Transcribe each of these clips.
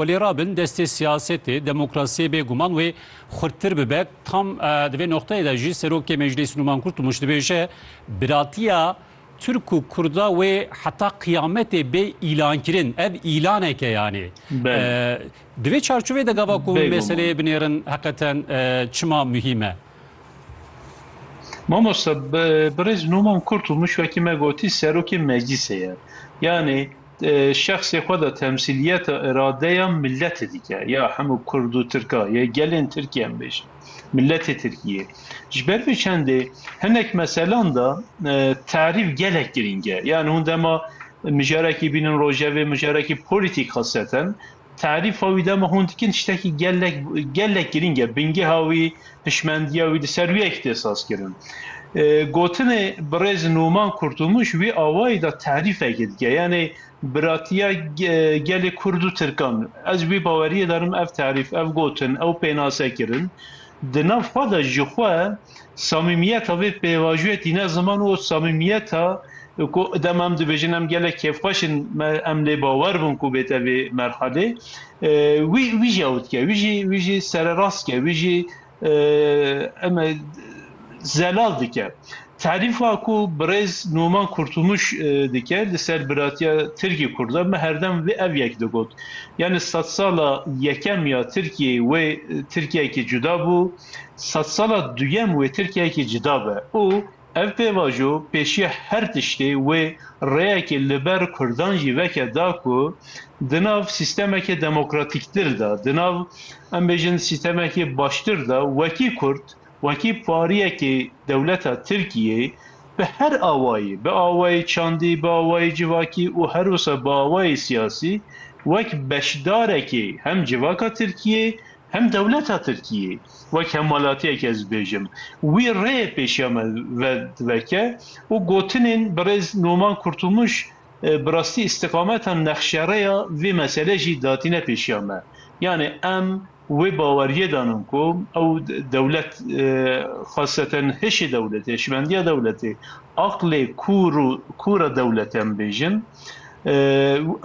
Xwe lê rabin destê siyasetê, demokrasiyê bê guman wê xurttir bibe. Tam di vê noqteyê de jî Serokê Meclîs Nûman Kurtulmuş dibêje, Biratiya Tirk û Kurda wê heta qiyametê bê îlankirin. Ev îlanek e yanê. Di vê çarçoveyê de gava ku meseleyê binêrin heqeten çima muhîm e? Mamoste birêz Nûman Kurtulmuş wekî me gotî Serokê Meclîsê ye. Yanê şexsê xwe de temsîliyeta îradeya miletê dike, ya hemû kurd û tirka yê gelên Tirkiyê em bêjin, miletê Tirkiyê. Ji ber vê çendê hinek meselan de tarîf gelek girîng e. Yan hûn dema mijarekî bînin rojevê, mijarekî polîtîk xiseten. Tarîfa wî dema hûn dikin tiştekî gelek gelek girîng e. Bingêha wî, hişmendiya wî di ser wî yekî tê sazkirin. Gotinê birêz Numan Kurtulmuş wî awayî de tarîfekê dike. Yanî biratiya gelê kurd û tirkan. Ez wî baweriyê darim ev tarîf, ev gotin, ew pênasekirin di nav xwe de jixwe, Samîmiyeta vê pêvajoyê tîne ziman û samîmiyeta ku dema em dibêjin em gelek kêfxweş in me em lê bawer bûn ku bête vê merhalê wî wî jî ew dike wî jî wî jî sererast dike wî jî eme zelal dike. Terîfa ku birêz Numan Kurtumuş dike li ser biratiya Tirkî Kurda me herdem vê ev yek digot. Yanî sedsala yekem ya Tirkiyeyê wê Tirkiyeyekî cuda bû. sedsala duyem wê Tirkiyeyekî cuda be û ev pêvajo pêşiya her tiştê wê rêyekê li ber kurdan jî veke da ku di nav sîstemekê demokratîktir de, di nav em bêjin sîstemekê baştir de wekî kurd, wekî pariyekê dewleta Tirkiyê bi her awayî, bi awayî çandî, bi awayî civakî û her wisa bi awayî siyasî wek beşdarekê hem civaka Tirkiyê Hem dewleta Tirkiyê wek hemwelatiyek ez dibêjim wî rê pêşiya me vediveke û gotinên birêz Noman Kurtulmuş bi rastî îstiqameta nexşereya vê mesele jî datîne pêşiya me. Yanî em wê baweriyê danin ku ew dewlet xaseten hişê dewletê, hişmendiya dewletê, aqlê kûr û kûra dewletê em dibêjin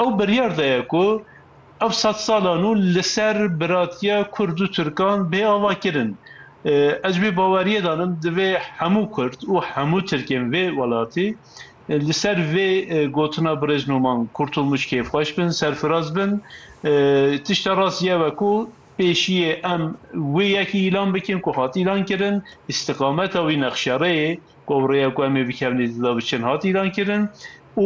ew biryar daye ku, Ev sed salan û li ser biratiya kurd û tirkan bê ava kirin. Ez ji vê baweriyê de in divê hemû kurd û hemû tirkên vê welatê li ser vê gotina birêz Noman Kurtulmuç kêfxweş bin, serfiraz bin. Tişta rastî ev e ku pêşiyê em wê yekî îlan bikin ku hat îlan kirin, îstiqameta wî, nexşereyê ku ew rêya ku em ê bikevin ê di de biçin hat îlan kirin û